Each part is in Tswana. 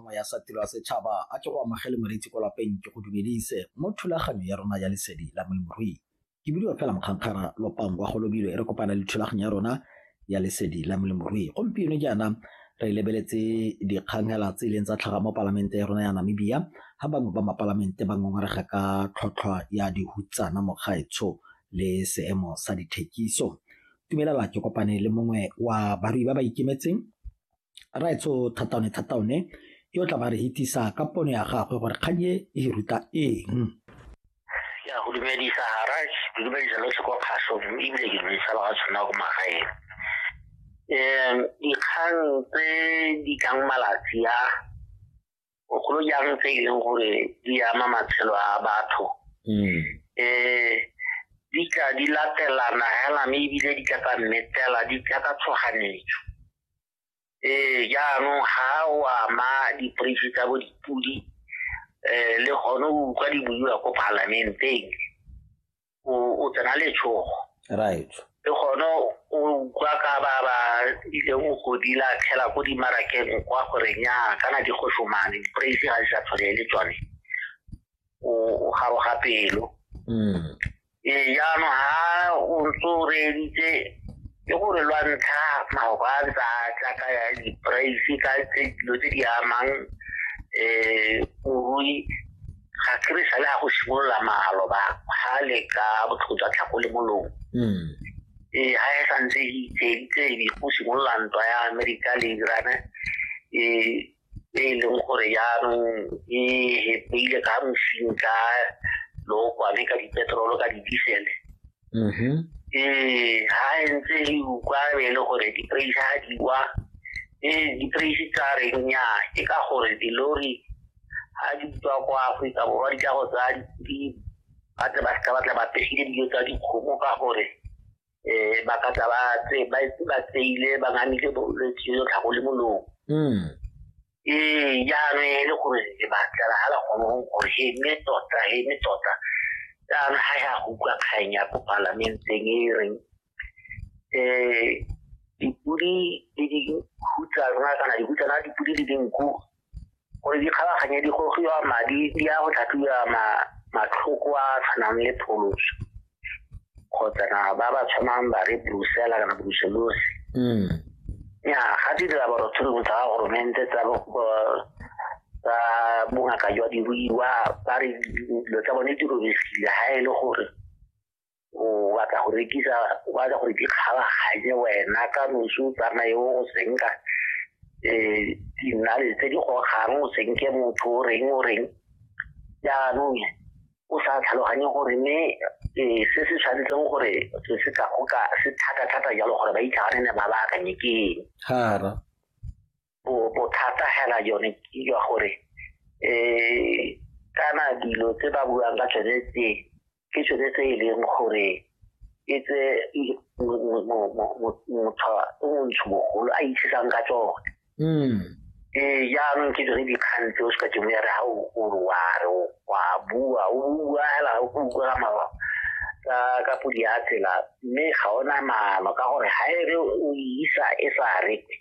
mongwe ya sa tiro ya setšhaba a ke go amogele moreetsi kwa lapeng ke go dumedise mo thulaganyo ya rona ya lesedi la molemirui ke bidiwa fela mokgankgara lopang wa golobilo e re kopana le thulaganyo ya rona ya lesedi la molemirui gompieno jaana re lebeletse dikgangela tse e leng tsa tlhaga mo palamente ya rona ya namibia ga bangwe ba mapalamente ba ngongorega ka tlhotlhwa ya dihutsana mokgaetsho le seemo sa dithekiso tumelela ke kopane le mongwe wa barui ba ba ikemetseng raetsho thataone thataone yo tla ba re hitisa ka pono ya gagwe gore kgang e e ruta eng ya go dumedisa garaj ke dumedisa lotlhe kwa kgaso ebile ke dumedisa ba ga tshwana ko magaeng um dikgang tse di tlang malatsi a bogolo jang tse e leng gore di ama matshelo a batho um di tla di latelana hela mme ebile di tla ka mmetela di tla ka tshoganetso ee jaanong ga o ama diporeisi tsa bo dipodi um le gone o utlwa di buiwa ko palamenteng o tsena letshogo right le gone o utlwa ka ba ba ileng o godila tlhela ko dimarakeng kwa gore nya kana di go somane di-praise ga di sa tshwane le tsone o garoga pelo mm. ee jaanong ga o ntse o reeditse ke gore lwa ntlha maoka a ntse a tla ka ya di-praise ka dilo tse di amang um morui ga ke re sale ga go simolola maloba ga le ka botlhoko jwa tlhako le molomo hmm. ee ga e santse e itseeditse ebe go simolola ntwa ya amerika le irane ee e e leng gore jaanong e hepeile ka mosing ka lookwane ka dipetrolo ka di-diesele mm-hmm. ee ha e ntse e ukwa e le gore di-praise ha di wa ee di-praise tsa reng nya ke ka gore dilori ha di tswa ko aforika borwa di tla go tsaya ba tle ba seka batla ba pegile dijo tsa dikgomo ka gore um ba ka tsa ba tseile ba ngamile bolwetse jo tlhago le molong mm. ee jaanong e le gore lebatla la ga la kgone go gore he mme tota he mme tota jaanong ga ya go utlwa kgang ya ko palamenteng e reng um dipodi le dikhutsa rona kana dikhutsana dipodi le dinku gore di kgabaganye di gogiwa madi di ya go tlhatlhiwa matlhoko a tshwanang le pholoso kgotsa na ba ba tshwanang ba re brusela kana bruselosi mm. ya ga di dilaboratoring tsa ga goromente tsa tsa bongaka jwa diruiwa ba re dilo tsa bone di robegile ga e le gore o batla go rekisa o batla gore di kgabaganye wena ka nosi o tsamaye o go senka um dinale tse di gogang o senke motho o reng o reng jaanong o sa tlhaloganye gore mme ee, se se tshwanetseng gore se se ka go ka se thata-thata jalo gore ba itlhagane ne ba ba akanye ke eng hara bo- bothata hela yone ke jwa gore um kana dilo tse ba buang ka tsone tse ke tsone tse e leng gore e tse i- mo- mo- mo- mo- mo- motho o montsho mogolo a itshisang ka tsone mm. ee jaanong ke dire dikgang tse o se ka ke moya re ga o re wa re wa bua o bua fela o bua mawa ka ka podi ya tsela mme ga ona maano ka gore ga e re o isa e sa re ke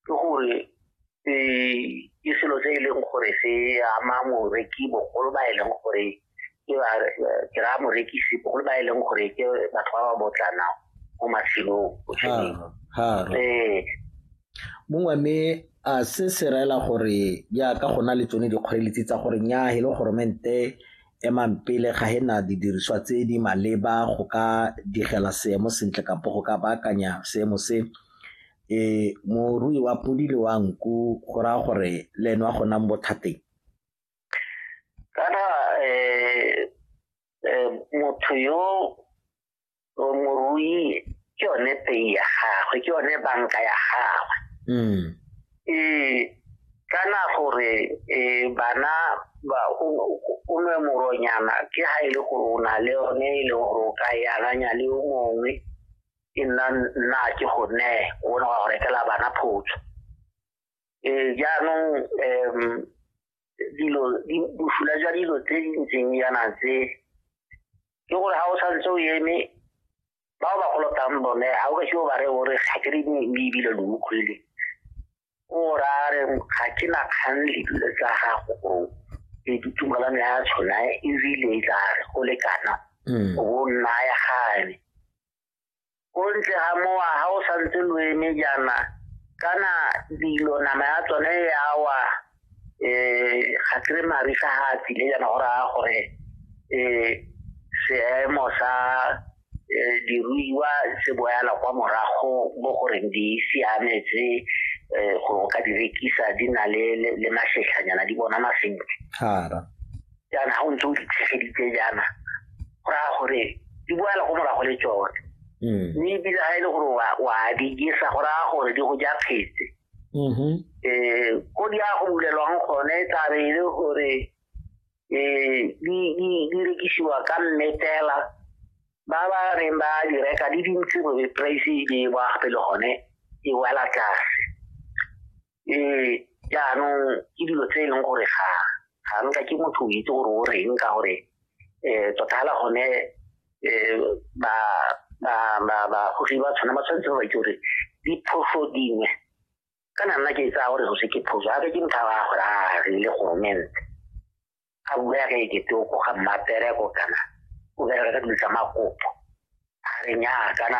gore um ke selo se e leng gore se ama moreki bogolo ba e leng gore ke ba ke ra morekisi bogolo ba e leng gore ke batho ba ba botlana mo matshelong ee mongwe mme a se se raela gore jaaka go na le tsone dikgoreletsi tsa gore nya e le goromente emang pele ga hena didiriswa tse di maleba go ka digela seemo sentle kapo go ka baakanya seemo se e morui wa podi le wa nku go raya gore le ene wa go nang bothateng kana eh, eh, motho yo o morui ke yone pei ya gagwe ke yone banka ya gagwe mm. ee kana gore eh, bana ba o nwe moronyana ke ha e le gore o na le yone e le gore o ka e akanya le yo mongwe e nna nna ke go ne o bona go rekela bana photso eh, jaanong um dilo bosula jwa dilo tse di ntseng yana tse ke gore ga o santse o eme bao ba golotang bone ga o ka seo ba re o re ga ke re mme ebile lo utlwile o ra re ga ke na kgang le dilo tsa gago o e ditumalano ya tshona ebile e tla re go lekana mm. o bo nna ya gane ko ntle ga mowa ga o santse lo eme jaana kana dilo nama ya tsone ya wa um ga kry marisa ga a tsile jaana go raya gore um seemo sa um diruiwa se boyala kwa morago mo goreng di siametse um go ka di rekisa di na le masetlhanyana di bonana sentle jaana ga o ntse o ditlhegeditse jaana go raya gore di boela go morago le tsone mm. mme ebile ga e le gore wa di jesa go raya gore di go ja phetse um mm-hmm. eh, ko di ya go bulelwang gone e tlabe e le gore um di rekisiwa ka mmetela ba ba reng ba di reka di dintsi gore price e ba gape le gone e wela tlase um jaanong ke dilo tse e leng gore ga ga nka ke motho o itse gore o reng ka gore um tota fela gone um ba bagogi ba tshwana ba tshwanetse ba ke gore diphoso dingwe kana nna ke tsaya gore go se ke phoso gape ke motho a gore a rile goromente a bula ka ekete o koga mmapereko kana o bereka ka dilo tsa makopo a re nyaa kana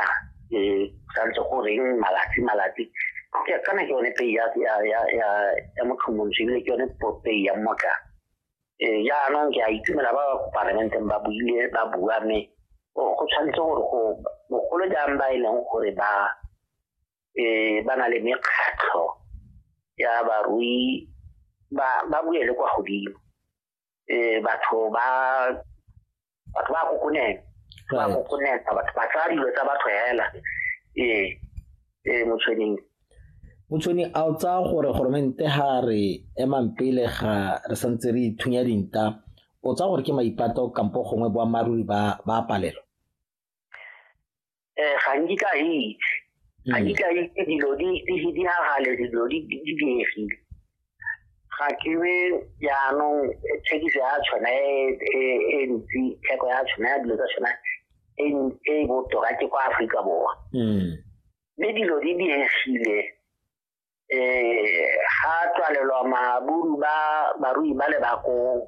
um santse go reng malatsi malatsi kana ke yone pei ya motlhomontsho ebile ke yone pei ya mmotla um jaanong ke a itumela ba ba parlamenteng ba buile ba bua mme go tshwanetse gore go bogolo jang ba e leng gore ba eh ba na le mekgatlho ya barui ba ba buele kwa godimo eh batho ba batho ba kokonela ba kokonela batho ba tsaya dilo tsa batho hela eh eh motshweneng motshweni a o tsaya gore goromente ga re emang pele ga re santse re ithunya dinta o tsaya gore ke maipato kampo gongwe boammaaruri ba ba palelo eh ga nke ka itse ga nke ka itse dilo di di ha gale dilo di di diegile ga ke be jaanong thekiso ya tshwana e ntsi theko ya tshwana ya dilo tsa tshwana e e botoka ke kwa Afrika Borwa mme dilo di diegile eh ga tswalelwa maburu ba barui ba le bakong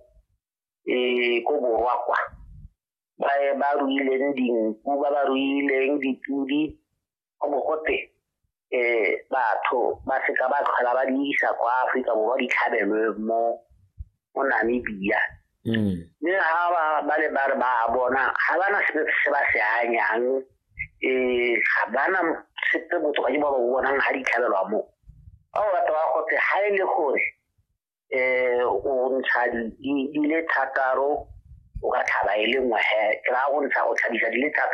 um ko borwa kwa ba ba ruileng dinku ba ba ruileng dipudi go bo gote um batho ba seka ba tlhola ba di isa kwa aforika borwa di tlhabelwe mo mo namibia mm. mme ga ba le ba re ba bona ga ba na sepe se ba se anyang um ga ba na sepe botho ba ke ba ba bonang ga di tlhabelwa moo ba o batho ba gote ga e le gore eh o ntsha di le thataro o ka tlhaba e le nngwe he ke raya go ntsha go tlhabisa di le thataro